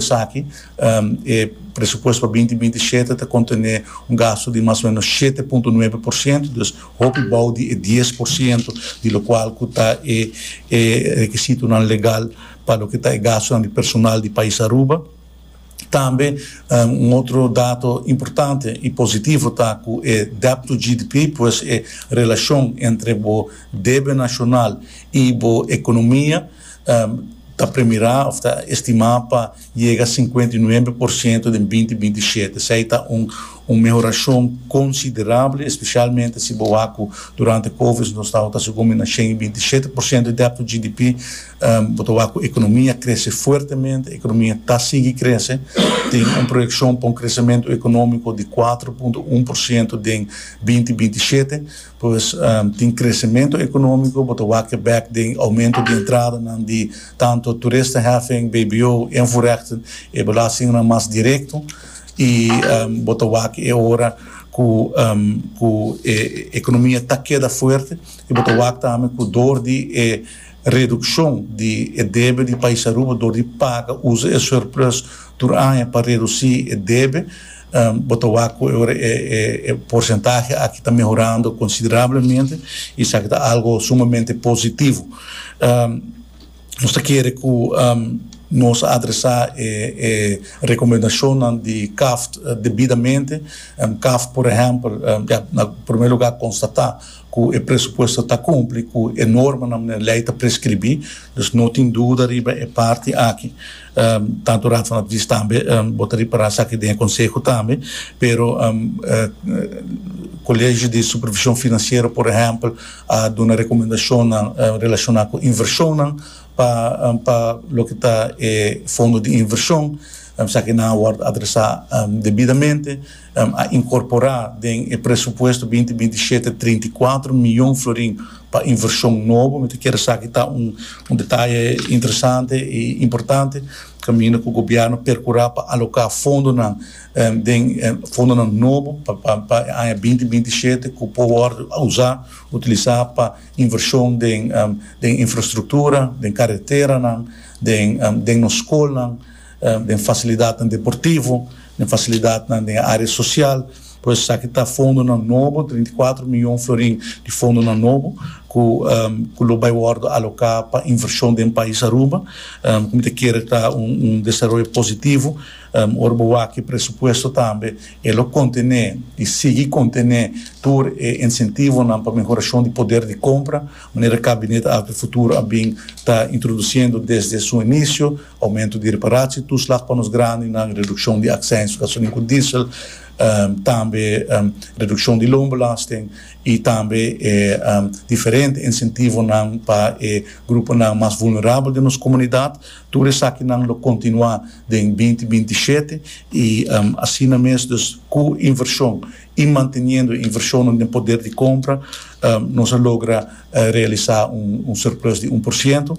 Esaki, e presupuesto pa binti binti shete ta kontené un gastu di mas o ménos shete punto nuebe por siento, dus hopi bou di e dies por siento di lokual ku ta e e rekisitonan legal pa loke ta e gastunan di personal di pais Aruba. Tambe un otro dato importante i positivo ta ku e debt to GDP, pues e relashon entre bo debe nashonal i bo ekonomia, ta premirá òf ta estimá pa yega sinkuenta i nuebe por siento den binti binti i shete. Esei ta un mehorashon konsiderabel, espesialmente si bo wak ku durante Covid nos tabata segun mi na shen i binti i shete por siento di dèbt tu GDP. Bo ta wak ku ekonomia krese fuertemente, ekonomia ta sigui krese, tin un proyekshon pa un kresementu ekonómiko di kuater punto un por siento den binti binti i shete. Pues tin kresementu ekonómiko, bo ta wak bèk den oumentu di entradanan di tantu Toeristenheffing, bbo en voorrechten, e belastingnan mas direkto, i bo ta wak e ora ku e ekonomia ta keda fuerte, i bo ta wak tambe ku dor di e redukshon di e debe di Pais Aruba, dor di paga usa e surplus tur aña pa redusí e debe, Bo ta wak ku e porsentahe aki ta mehorando konsiderablemente i esaki ta algu sumamente positivo. Nos ta kere ku nos a adresá e rekomendashonnan di Cavt debidamente. Cavt, por ehèmpel, na primer lugá konstatá. cu e presupuesto ta cumpli cu e normanan e ley ta prescribi, dus no tin duda riba e parti aki. Tanto Rafa a bish tambe, bo ta ripara esaki den e conseho tambe, pero Colegio di Supervision Financiero por ehempel a duna recomendacionnan relaciona cu inversionnan pa pa loke ta e fondo di inversion, esaki nan a word adresa debidamente. a inkorporá den e presupuesto binti binti shete trinta i kuater mion florin pa invershon nobo. Mi ta kere esaki ta un un detaye interesante i importante kaminda ku gobièrnu perkurá pa aloká fondonan den fondonan nobo pa pa pa e aña binti binti shete ku por wòrdu usá utilisá pa invershon den den infrastruktura, den kareteranan, den den nos skolnan. den fasilidatnan deportivo, den fasilidatnan den e área sosial, por esaki ta fondonan nobo, treinta i kuater mion florin di fondonan nobo ku ku lo bai wòrdu aloká pa invershon den pais Aruba, ku mi ta kere ta un un desaroyo positivo, ora bo wak e presupuesto tambe e lo kontené i sigui kontené tur e insentivonan pa mehorashon di poder di kompra, manera Kabinet Alto e Futuro a bin ta introdusiendo desde su inisio. Aumento di reparatie toeslag pa nos grandinan, reduccion di accijns pa gasolin cu diesel, tambe reduccion di loonbelasting y tambe e diferente incentivonan pa e gruponan mas vulnerabel den nos comunidad. Tur esakinan lo continua den binti binti i shete y asina mes dus cu inversion y manteniendo e inversionnan den poder di compra nos a logra realisa un surplus di un por ciento.